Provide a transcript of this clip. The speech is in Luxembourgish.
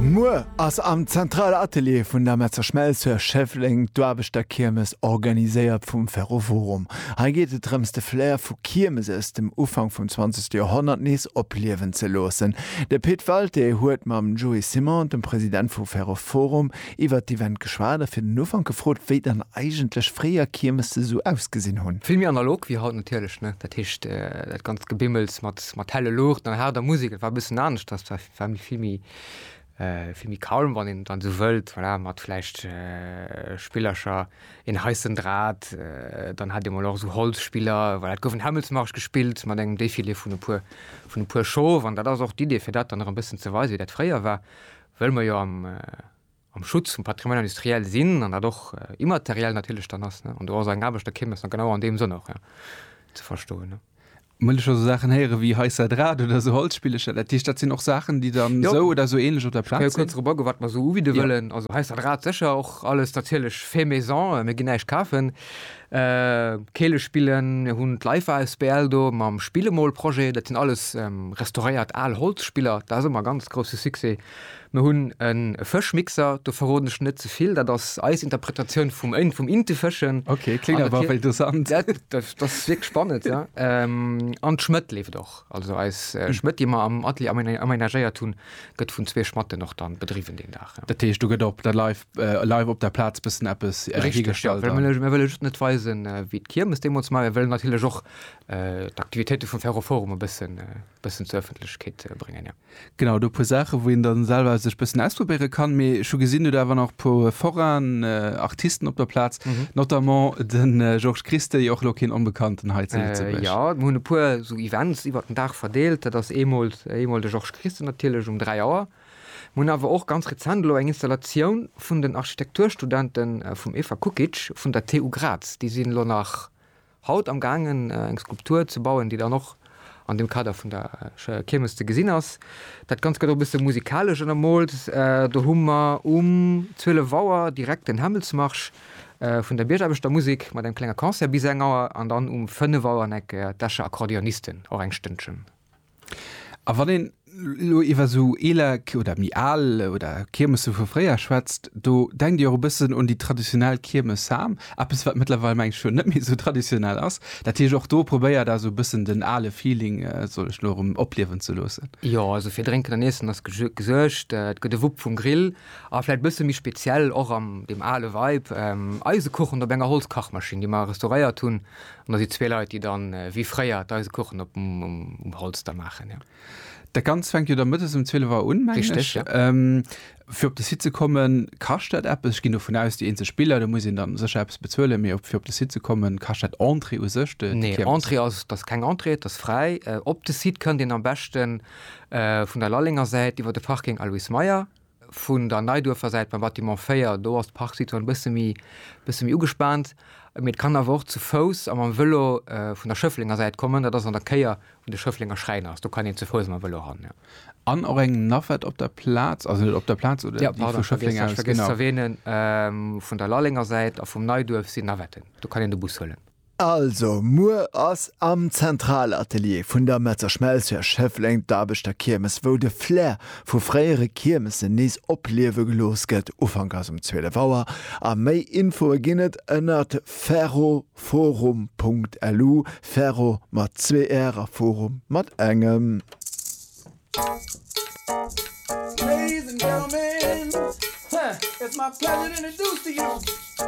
Muer ass am Zentral Atelier vun der Metzer Schmelz zu Schëffleng d'Aarbechterkiermes organiséiert vum Ferroforum. Hei geet et drëms de Flair vu Kiermes aus dem Ufank vum zwanzegste Joerhonnert nees opliewen ze loossen. De Pit Walté huet mam Joe Simon, dem President vu Ferroforum, iwwert d'Event geschwat a fir den Ufank gefrot, wéi dann eigentlech fréier Kiermesse sou ausgesinn hunn. Vill méi analog wéi haut natierlech, ne? Dat heescht dat ganzt Gebimmels mat Konzert mat helle Luuchten an haarder Musek. Et war e bëssen aneschters, et war, war méi vill méi, vill méi calm, wann een et dann esou wëllt, voilà, mat vläicht Spillercher, een heissen Drat, dann hat ee mol och esou Holzspiller, voilà. Et gouf en Hämmelsmarsch gespillt mat engem Défilé vun e puer, vun e puer Chauve an dat ass och d'Idee, fir dat dann nach e bëssen ze weisen, wéi dat fréier war, wëll mer jo am, am Schutz vum Patrimoine industriel sinn an dat och immateriell natierlech dann ass, an do ass eng Aarbechterkirmes dann genau an deem Sënn och ze verstoen. Well ech jo esou Saachen héiere wéi hei Sadrat oder esou Holzspillecher, dat heescht, dat sinn och Saachen, déi dann esou oder esou änlech op der Plaz sinn? Ech kann jo kuerz erop agoen, wat mer esou ubidde wëllen. Also hei Sadrat sécher och alles natierlech fait maison, mir ginn näischt kafen. Keelespillen, mir hunn d'Leif asbl do mam Spillemol-Projet, dat sinn alles restauréiert al Holzspiller, dat ass ëmmer e ganz grousse Succès. Mir hunn e Fëschmixer, do verroden ech net ze vill, dat ass eis Interpretatioun vum Ënn, vum Inte fëschen. Okay, kléngt awer wéi dosant. Dat ass wierklech spannend, ja. An d'Schmëtt leeft och. Also eis Schmëtt, déi mer am Atelier amenagéiert hunn, gëtt vun zwee Schmatten och dann bedriwwen deen Dag. Dat heescht, do gëtt op der live, live op der Plaz bëssen eppes hiergestallt? Richteg, jo. Mir wëlle just net weisen, wéi d'Kiermes deemools war. Mir wëllen natierlech och d'Aktivitéite vum Ferroforum e bëssen, bëssen zur Ëffentlechkeet bréngen, jo. Genau, do e puer Saachen, wou een dann selwer sech bëssen ausprobéieren kann. Mee ech hu gesinn, Dir hutt awer wan och e puer Forain Artisten op der Plaz, notamment den Georges Christey, och elo keen Onbekannten hei zu Lëtzebuerg. Jo, mir hunn e puer esou Events iwwert den Dag verdeelt. Dat ass eemol eemol de Georges Christey natierlech um 3 Auer. Mir hunn awer och ganz rezent elo eng Installatioun vun den Architekturstudenten vum Eva Kukic vun der TU Graz. Déi sinn elo nach. Haut am gaangen eng Skulptur ze bauen, déi dann och an dem Kader vun der Kiermes ze gesinn ass. Dat Ganzt gëtt och e bësse musikalesch ënnermoolt. Do hu mer um 12 Auer direkt den Hämmelsmarsch vun der Biergaarbechter-Musek mat engem klenge Concert bis eng Auer an dann um 5 Auer en Eck d'Escher Akkordeonisten och eng Stënnchen. A wann een elo iwwer esou eeler oder méi al oder Kiermesse vu fréier schwätzt, do denkt Dir och e bëssen un déi traditionell Kiermes, ha? Eppes, wat mëttlerweil, mengen ech, jo net méi esou traditionell ass. Dat heescht, och do probéiert Der esou e bëssen den ale Feeling, soll ech elo erëm, opliewen ze loossen? Jo, also fir Drénken an Iessen ass gesuergt. Et gëtt e Wupp vum Grill a vläicht e bësse méi speziell och an deem ale Vibe, Eisekuchen op enger Holzkachmaschinn, déi mer restauréiert hunn. An da si zwee Leit, déi dann, wéi fréier, d'Eisekuchen op um Holz da maachen, jo. Dat Ganzt fänkt jo da mëttes um 12 Auer un, mengen ech. Richteg, jo. Fir op de Site ze kommen, kascht dat eppes? Ech ginn dovun aus, déi eenzeg Biller, do muss een da sécher eppes bezuelen, mee fir op de Site ze kommen, kascht dat Entrée u sech, de Kirmes? Nee, Entrée ass, et ass keng Entrée, et ass fräi. Op de Site kënnt een am beschten vun der Lallenger Säit iwwer de Parking Alois Meyer. Vun der Neiduerfer Säit beim Bâtiment 4, do ass d'Parksituatioun e bësse méi, bësse méi ugespaant. Mee et kann awer och zu Fouss a mam Vëlo vun der Schëfflenger Säit kommen. Dat ass an der Kéier, wou de Schëfflenger Schräin ass. Do kann een zu Fouss a mam Vëlo ran, jo. An och eng Navette op der Plaz, also net op der Plaz, oder déi vu Schëffleng aus, genau. Jo, pardon, ech hat vergiess ze erwähnen, vun der Lallenger Säit a vum Neiduerf sinn Navetten. Do kann een de Bus huelen. Also, muer ass am Zentralatelier vun der Metzer Schmelz hir Schëffleng, d'Aarbechterkiermes, wou de Flair vu fréiere Kiermesen nees opliewe gelooss gëtt. Ufank ass um 12 Auer a méi Infoe ginn et ënnert ferroforum.lu, Ferro mat zwee r a Forum mat engem.